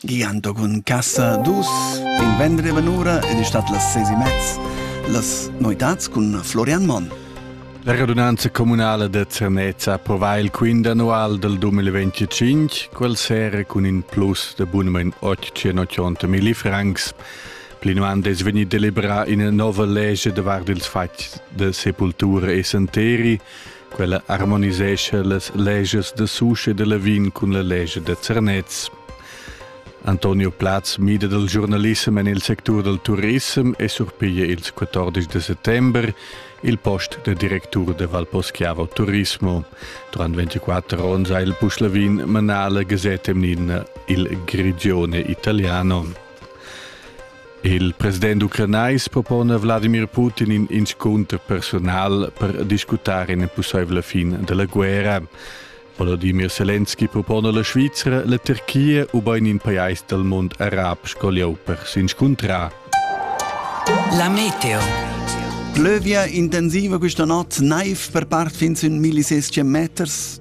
Gian Dogun Casa dus in vendrevan ura ed è stat las seis e mez. Las noitads cun Florian Monn. La radunanza communala da Zernez prova il quint annual del 2025, quel sera cun in plus de bunament 880.000 francs. Plinavant es vegnit deliberà ina nova legge davart ils fatgs de sepultura e santeri, Quella harmonisescha las legias da Susch e da Lavin cun la legia da Zernez. Antonio Platz mida dal giornalissem en il sectur dal turissem e surpiglia ils 14 de settembre il post de directur de Valposchiavo Turismo. Durant 24 onns ha il Puschlavin manà la Gazette Mnina Il Grigione Italiano. Il president ucranais propona Vladimir Putin in inscunter personal per discutar ina pussaivla fin della guerra. Volodymyr Zelensky propona la Svizra, la Turchia u bein in pajais del mond arab sco lieu per s'inscuntrar. La meteo. Plövia intensiva questa notte naiv per part fin sün 1600 meters.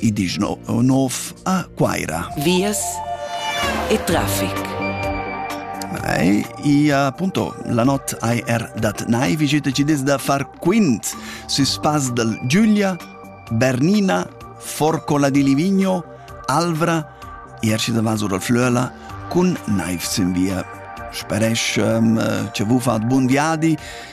i dischno nov a Quaira. Vias e traffic. Ei, ia appunto la not AR dat nai visite ci des da far quint su spas del Giulia, Bernina, Forcola di Livigno, Alvra, Ierci da Vaso dal Flöla, cun naiv sin via. Speresch um, ce vu fat bun viadi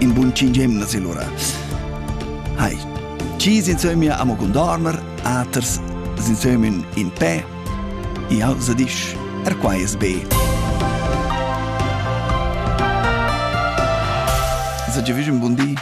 In bun cinc emnas lura. Hai, chi insömia amo condorner, aters insömin in pe, jau sa disch, er quai es be. Sa giavüsch un bun di.